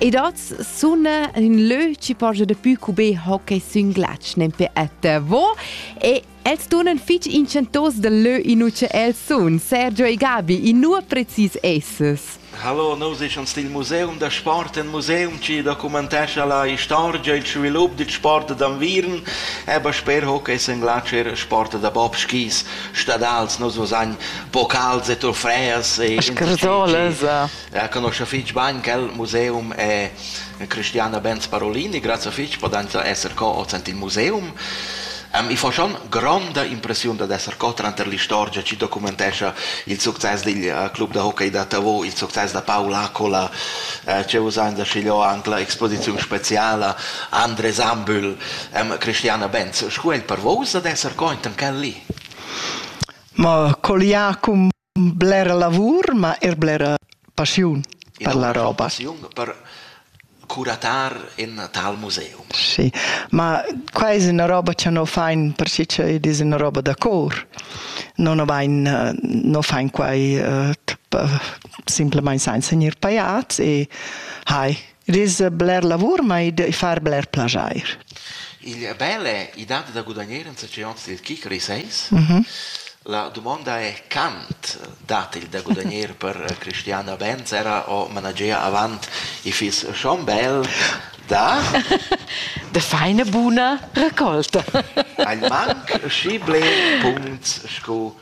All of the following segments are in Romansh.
Ed oz suna in lö chi poja dapü cu be hockey sün glatsch nempe at vo e els tunan fich inchantos dal lö inua cha els sun, Sergio e Gabi, inua precis esses? Hallo, nus eschans dil Museum da Sport, ein museum che documentescha la historia e il svilup del sport d'Anviern, aber sper hockey en glatsch er sport da bobskis, stadals, nus vos ein bocals e trofeas e Scherzoles. Reconosce fich bain quel museum e Christiana Benz-Parolini, grazie fich, podenza esser co ozent in museum. Um, I fa schon gronda impressiun dad esser co tranter l'istorgia chi documentescha il success digl uh, club da hockey da Tavo, il success da Paul Accola, uh, che usain da schiglio anche la exposiziun speciala Andres Ambühl, um, Christiana Benz. Scu è per vos ad esser co intan quel lì? Ma coliacum Blera lavur, ma eir blera passiun per la roba. Passiun per curatar in tal museum. Sì, ma qua es üna roba cha no fain perche ed es üna roba da cor. No no vain no fain quai simplamaing sainza gnir pajats e hai Ris bler lavur, ma id far bler plajair. Il bel è, i dat da gudagnare in succès anzi il kick reseis. Mm -hmm. La domanda è quant dat il da gudagnare per Cristiana Benz era o managea avant i fiss schon bel da de feine buna raccolta. Ein manc schi ble punts sco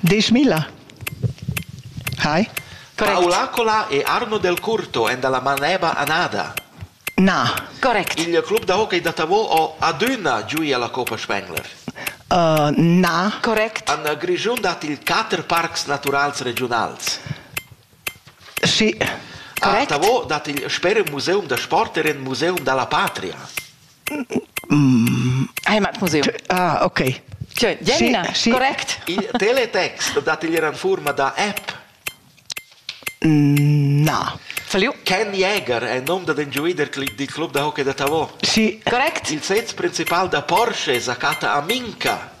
Deschmilla. Hai. Correct. Aulacola e Arno Del Curto èn dalla Maneba anada. Na. Correct. Il club da hockey da Tavò ha adüna giu alla Coppa Spengler. Uh, na. Correct. An Grischun dat il quater parcs naturals regiunals. Sì. Correct. A Tavò dat il sper museum da sport er in museum dalla patria. Heimatmuseum. Ah, okay. Jenna, correct. Il teletext dat igl era en forma da app? Na. Falliu? Ken Jäger è il nome da den giuider del club da hockey da Tavò. Sì. Correct. Il sez principal da Porsche sa chatta a Minca.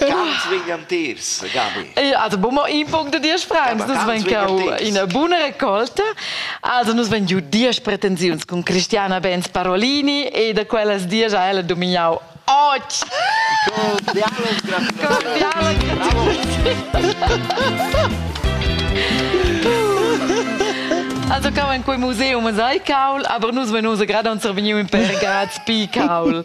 Ganz wegen am Teers, Gabi. Ja, also bomo in punct da dies frags, nus ven cau ina buna raccolta. Also nus ven giu dies pretensiuns con Cristiana Benz Parolini e da quellas dies ha ella domignau och. Cordiales Also cau in quei museum sai caul, aber nus venus grad on survegniu in per grad pi caul.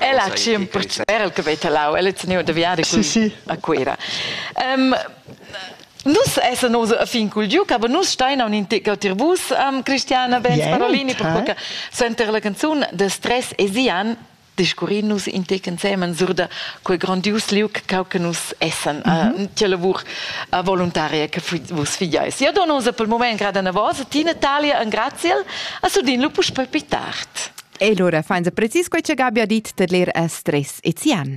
Ella ha tschien pertgei era el che vei talau. Ella ha teniu da viadi cun, sì, sì. a Cuira. Um, Nus essen oso a fin cul giuc, aber nus stein a un integauter bus, um, Cristiana Benz yeah, Parolini, per qualche senter la canzun de stress e Sian discurrin nus intec ensemen sur da quei grandius liuc cau che nus essen, mm -hmm. uh, tia lavur uh, volontaria che vus figiais. Io dono osa pel moment grada na vosa, ti Natalia, en graziel, a sudin lu puspei più tard. E lura fainsa precis quai cha Gabi ha dit tar l'er a stres e Zian.